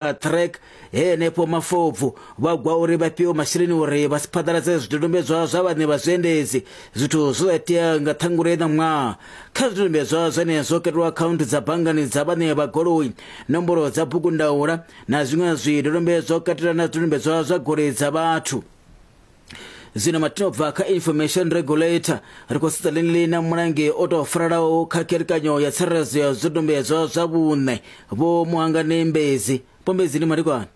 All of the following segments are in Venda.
vha trek he henefho mafobvu vha gwa uri vha fhiwe masheleni uri vha si phaḓaladze zwidodombedzwa zwa vhaṋe vha zwiendedzi zwithu zwo itea nga ṱhangule na ṅwaha kha zwidodombedzwa zwene zwo katelwa akhaunthu dza banngani dza vhaṋe vha goloi nomboro dza bugu ndaula na zwiṅwe zwidodombedzwa u katela na zwidodombedzwa zwa goloi dza vhathu zwino matinobva kha information regulator ri khou sedza ḽini ḽina mulangi o tou faralaho kha kherekanyo ya tsireledzo ya zwidodombedzwa zwa vhuṋe vho muhangani mbedzi pombedzi ndi madekwana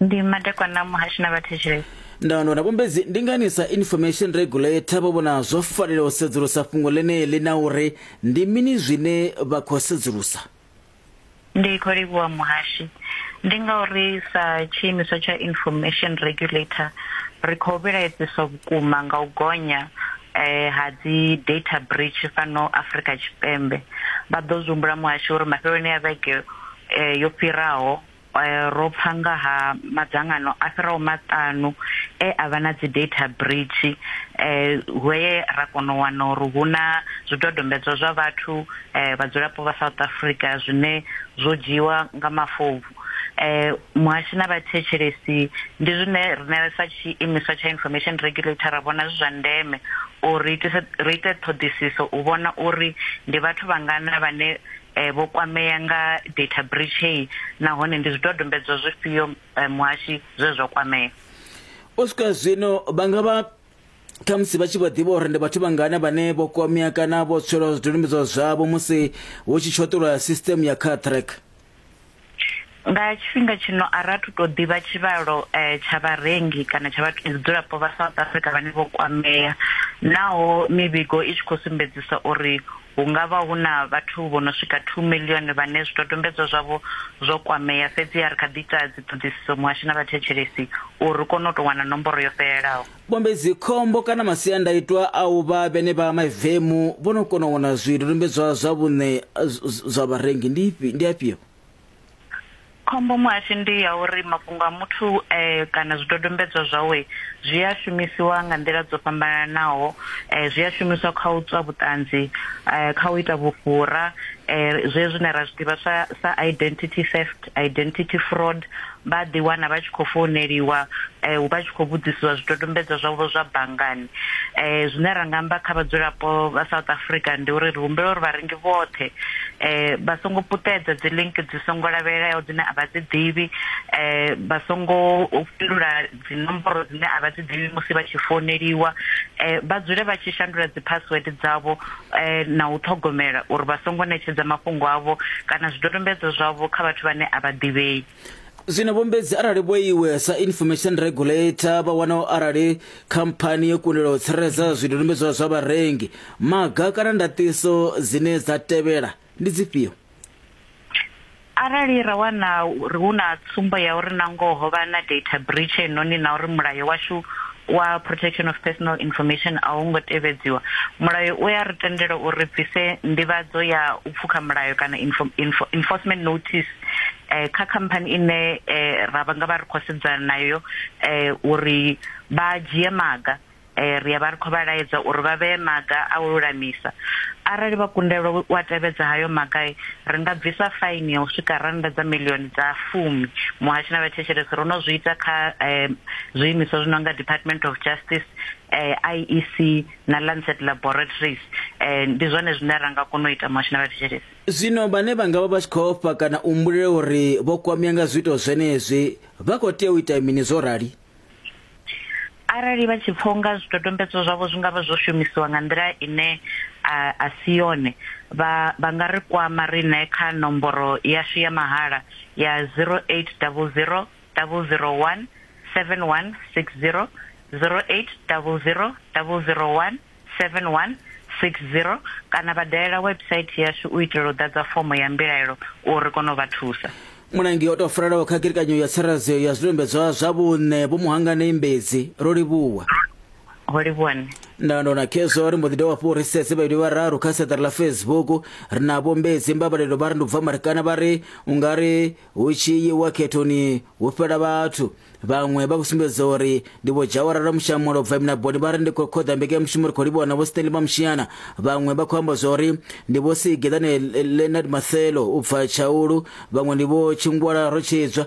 ndi madekwana muhashi na vhathetshelesi ndando na pombedzi ndi ngani sa information regulator vho vhona zwo fanela u sedzulusa fhungo ḽeneḽi na uri ndi mini zwine vha khou sedzulusa Ndi khou livhuwa muhashi. Ndi ngauri sa tshiimiswa tsha Information Regulator ri khou vhilaedziswa vhukuma nga u gonya ha dzi data breach fhano Afrika Tshipembe. Vha ḓo zwi humbula muhashi uri mafheloni a vhege yo fhiraho, Ro pfa nga ha madzangano a fhiraho maṱanu e a vha na dzi-data breach he ra kona u wana uri hu na zwidodombedzwa zwa vhathu, vhadzulapo vha South Africa zwine zwo dzhiiwa nga mafobvu. Muhashi na vhathetshelesi ndi zwine riṋe sa tshiimiswa tsha Information Regulator ra vhona zwi zwa ndeme uri ri ite ṱhoḓisiso u vhona uri ndi vhathu vhangana vhane vho kwamea nga data breach heyi nahone ndi zwidodombedzwa zwifhio muhashi zwe zwa kwamea? U swika zwino vha nga vha khamusi vha tshi vha ḓivha uri ndi vhathu vhangana vhane vho kwamea kana vho tswelwa zwidodombedzwa zwavho musi hu tshi tshoṱolwa sisiteme ya car track. Nga tshifhinga tshino a ra thu tou ḓivha tshivhalo tsha vharengi kana tsha vhadzulapo vha South Africa vhane vho kwamea naho mivhigo i tshi khou sumbedzisa uri hu nga vha hu na vhathu vho no swika 2 miḽioni vhane zwidodombedzwa zwavho zwo kwamea, fhedziha ri kha ḓi ita dziṱhoḓisiso muhasho na vhathetshelesi uri ri kone u tou wana nomboro yo fhelelaho. Pombe dzikhombo kana masiandaitwa a u vha vhene vha maivemu vho no kona u wana zwidodombedzwa zwa vhuṋe zwa vharengi ndi ifhi ndi afhio? Khombo muhasho ndi ya uri mafhungo a muthu kana zwidodombedzwa zwawe zwi a shumisiwa nga nḓila dzo fhambananaho, zwi a shumiswa kha u tswa vhuṱanzi, kha u ita vhufhura, zwezwi zwine ra zwi ḓivha sa identity theft, identity fraud, vha ḓiwana vha tshi khou founeliwa um vha tshi khou vhudzisiwa zwidodombedzwa zwavho zwa banngani um zwine ra nga amba kha vhadzulapo vha south africa ndi uri ri humbela uri vharengi vhoṱhe um vha songo puṱedza dzi link dzi songo lavhelelaho dzine a vha dzi ḓivhi um vha songo fhindula dzi nomboro dzine a vha dzi ḓivhi musi vha tshi founeliwa um vha dzule vha tshi shandula dzi password dzavho na u ṱhogomela uri vha songo ṋetshedza mafhungo avho kana zwidodombedzwa zwavho kha vhathu vhane a vha ḓivhei zwino vhombedzi arali vho iwe sa information regulator vha wana arali khamphani yo kundelwa u tsireledza zwidodombedzwa zwa vharengi maga kana ndaṱiso dzine dza tevhela ndi dzifhio? Arali ra wana uri hu na tsumbo ya uri nangoho ho vha na data breach heinoni na uri mulayo washu wa Protection of Personal Information a u ngo tevhedziwa, mulayo u a ri tendela uri ri bvise nḓivhadzo ya u pfukha mulayo kana enforcement notice kha khamphani ine ra nga vha ri khou sedzana nayo uri vha dzhie maga. ri ya vha ri khou vha laedza uri vha vhee maga a u lulamisa. Arali vha kundelwa u a tevhedza hayo maga, ri nga bvisa faini ya u swika rannda dza miḽioni dza fumi. Muhasho na vhathetshelesi ro no zwi ita kha zwiimiswa zwi no nga Department of Justice, IEC na Lancet Laboratories. Ndi zwone zwine ra nga kona u ita muhasho na vhathetshelesi. Zwino vhane vha nga vha vha tshi khou ofha kana u humbulela uri vho kwamea nga zwiito zwenezwi vha khou tea u ita mini zwo rali? arali vha tshi pfha unga zwidodombedzwa zwavho zwi nga vha zwo shumisiwa nga nḓila ine a si yone vha vha nga ri kwama riṋe kha nomboro yashu ya mahala ya 0800 001 7160 0800 001 7160 kana vha dalela website yashu u itela u ḓadza fomo ya mbilaelo uri ri kone u vha thusa. Mulangi o tou farelaho kha kirikanyo ya tsireledzeo ya zwidodombedzwa zwa vhuṋe Vho Muhangani Mbedzi, ro livhuwa. Ho livhuwa nṋe. Ndando na Khezwa ri mbo ḓi dovha hafhu ri sedze vhaiti vhararu kha seṱari ḽa Facebook. Ri na Vho Mbedzi Mbabalelo vha ri ndi u bva Marikana vha ri u nga ri hu tshi yiwa khethoni hu fhela vhathu vhaṅwe vha khou sumbedza uri ndi vho dzhawara lwa mushamulo bva minaboni vha ri ndi khou khoḓa mbekanyamushumo ri khou livhuwa na vho stanley mamushiana vhaṅwe vha khou amba zwa uri ndi vho sigeḓane leonard mathelo u bva tshaulu vhaṅwe ndi vho tshingwala rotshidzwa